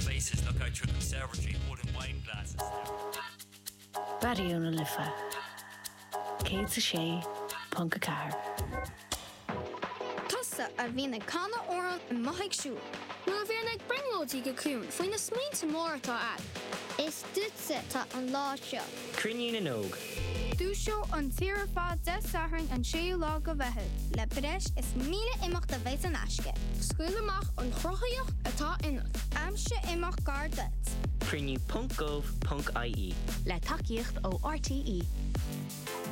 places look out through the conservatory holding wine glasses there. Raidió na Life 106.4. Tusa a bhíonn ag canadh amhrán amuigh ag siúl. Nó a bhíonn ag brionglóidí go ciúin faoi na smaointe móra atá agat. Is. Duitse atá an lá seo. Cruinniú na nÓg. Dúiseoidh an tír ar fad Dé Sathairn an 6ú lá de Mheitheamh. Le breis is 1,000 imeacht a bheidh saor in aisce. Scaoil amach an chruthaitheacht atá ionat. Aimsigh imeacht gar duit. Cruinniú ponc gov ponc ie. Le tacaíocht ó RTÉ.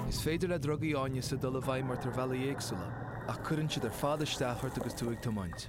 Is féidir le drugaí áineasa dul i bhfeidhm ort ar bhealaí éagsúla, ach cuireann siad ar fad isteach ort agus tú ag tiomáint.